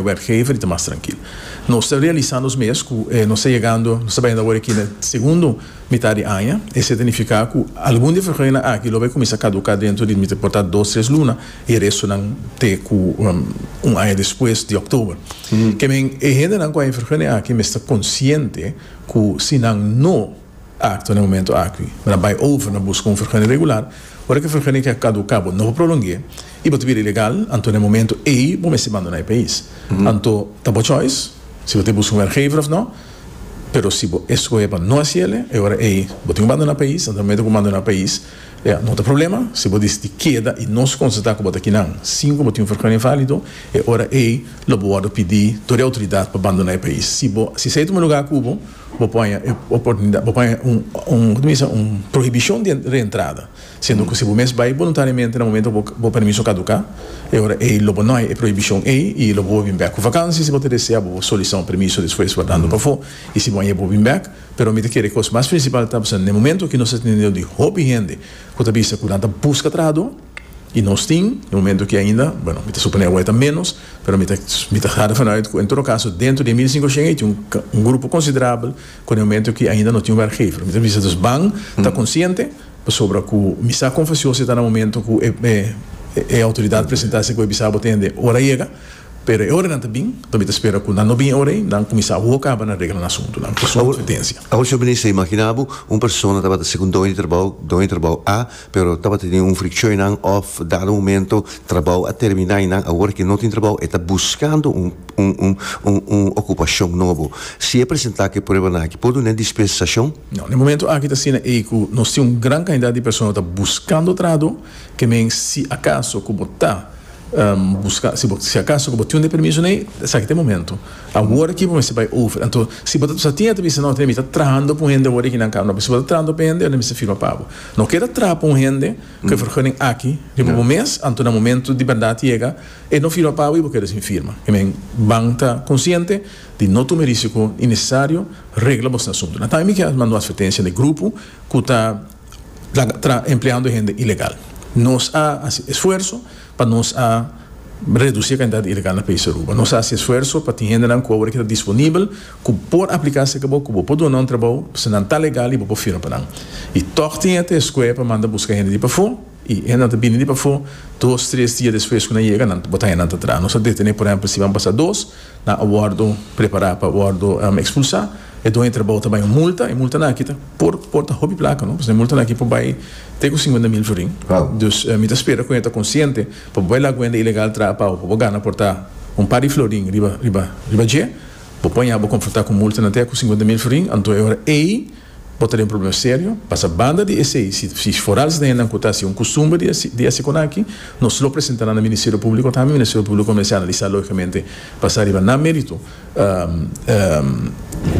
werkgever y ta mas trankil. Nos ta realisa nos mes cu nos ta yegando, nos ta bayando awor aki na segundo mitad di aña. Esey ta nifica cu algun di e vergonanan aki lo bay cuminsa caduca dentro di mester por ta dos, tres luna y restonan te cu un aña despues di october. Kemey e hendenan cu a e vergonanan aki mester consciente cu si nan no. Akto na e momento aki. Bo ta bai over na buska un fergani regular. Ora ku e fergani ke a kaduká bo no por prolong'é i bo ta bira ilegal, anto na e momento ei bo mester bandoná e pais. Anto ta bo choice si bo ta buska un wèrkgever òf no, pero si bo eskohe pa no hasi el'e, e ora ei bo tin ku bandoná e pais. Anto na e momento ku bo bandoná e pais ya no ta problema. Si bo disití keda i nos konstatá ku bo ta kinan sin ku bo tin un fergani válido, e ora ei lo bo wòrdu pidí tur e outoridat pa bandoná e pais. Si bo si esei ta un lugá ku bo. Bo poña e oportunidat, bo poña un, un, kota mi bisa, un prohibishon di reentrada, siendo ku si bo mes bai boluntariamente na momento ku bo permiso kaduká, e ora ei lo bo no hay e prohibishon ei i lo bo por bin bèk ku vakansia, si bo ta desea bo por solisitá un permiso despues wardando pafó i si bo hay e bo bin bèk, pero mi ta kere kos mas prinsipal ta, bo sa, na e momento aki nos ta tene un nivel di hopi hende ku ta bisa ku nan ta buska trahadó. Y nos tin e momento ki ainda, bueno, mi ta suponé awor e ta ménos, pero mi ta mi ta harda fala uit ku en todo kaso dentro di e mil sinku shen ei tin un grupo konsiderabel ku den momento ki ainda no tin un wèrkgever. Mi ta bisa dus ban ta konsiente pasobra ku mi sa kon fasioso e ta na momento ku e e outoridat presentá esei ku e bisá bo ta hende ora a yega, pero e oranan ta bin, mi ta spera ku nan no bin e ora ei, nan kuminsá awor kaba na regla nan asuntu, nan. Awor, Sr. Minister, imaginá bo un persona tabata sigun doño di trabou, doño di trabou A. Pero tabata tin un frikshon einan òf dado momento trabou a terminá i nan awor ke no tin trabou e ta buskando un un un okupashon nobo. Si e presentá ku e pruebanan aki por dun'é dispensashon? No, den momento aki ta asina ei ku nos tin un gran kantidat di persona ku ta buskando trado, ke men si akaso ku bo ta buska si bo si akaso ku bo tin un e permisonan ei esaki ta e momento. Awor aki bo mester bai over. Anto si bo ta sa tin e ta bisa no mi ta trahando ku un hende awor ei ki nan kaba no pero si bo ta trahando pa hende nan mester firma pabo. No keda trapa un hende ku e vergunning aki riba bo mes, anto na momentu di bèrdat yega e no firma pawe i bo keda sin firma. I men ban ta konsiente di no tuma e risiko i nesesario regla bos na asuntu. Na tambe mi ke manda un atvertensia na e grupo ku ta empleando hende ilegal. Nos a hasi esfuerso pa nos a reduci e cantidad ilegal na país Aruba. Nos a haci esfuerso pa tin hendenan cu awor aki ta disponibel cu por aplica cerca bo, cu bo por duna un trabou pasobra nan ta legal y bo por firma pa nan. Y toch tin ete escoe pa manda busca hende di pafo y hendenan ta bini di pafo dos, tres dia despues cu nan yega nan bo ta hende nan ta traha. Nos a detene por ehempel si ban pasa dos. nan a wòrdu prepará pa wòrdu ekspulsá, e doño di trabou ta bai un multa, e multanan aki ta por por ta hopi plaka, no, pasobra e multanan aki por bai te ku sinkuenta mil florin, dus mi ta spera ku e ta konsiente pa bo bai laga kuenta ilegal traha pau pa bo gana por ta un par di florin riba riba riba dje, bo por haña bo konfrontá ku multanan te ku sinkuenta mil florin, anto e ora ei. Bo ta den problema serio, pasa banda di esei, si foral esnan nan ku ta hasi un kustumber di hasi konaki, nos lo presenta nan na Ministerio Públiko, ta mi Ministerio Públiko kuminsá analisá lógikamente, basá riba nan mérito,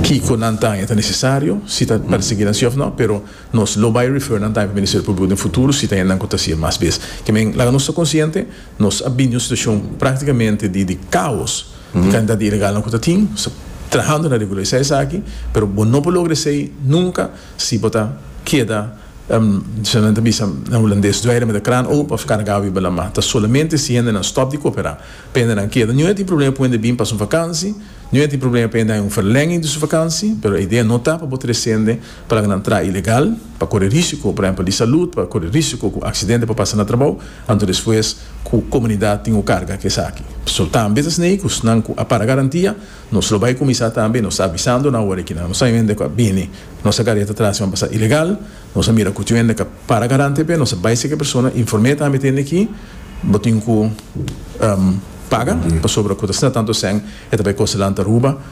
kiko nan ta haña ta nesesario, si ta persiguí nan sí òf nò, pero nos lo bai refer nan tambe pa Ministerio Públiko den futuro si ta haña nan ku ta hasi e mas bes. Ke men, laga nos ta konsiente, Nos a bini un situashon praktikamente di di kaos di kantidat di ilegalnan ku ta tin. Nos ta trahando na regularisá esaki, pero bo no por logra esei nunka si bo ta keda, kiko nan ta bisa na hulandes, duerme met de kraan open of kargá wiba lamá. Ta solamente si hendenan stòp di koperá pa hendenan keda. Niun a tin problema pa hende bin pasa un vakansi, niun a tin problema pa hende haña un ferlènging di su vakansi, pero e idea no ta pa bo trese hende. Plan nan traha ilegal, pa kore risiko, por ehempel, di salud, pa kore risiko ku aksidente por pasa na trabou, anto despues ku komunidat tin ku karga ku esaki. So, ta ambes asnei ku snan ku a para garantia, nos lo bai kuminsá tambe, nos ta avisando nan awor aki nan, nos a hende ku a bini, nos a gareta tras nan pa sa ilegal, nos a mira ku tin un hende ku a para garante p'e, nos a bai seki persona, inform'e tambe t'e hende aki, bo tin ku paga, pasobra ku ta sna tantu esèn, e ta bai kostelan ta ruba.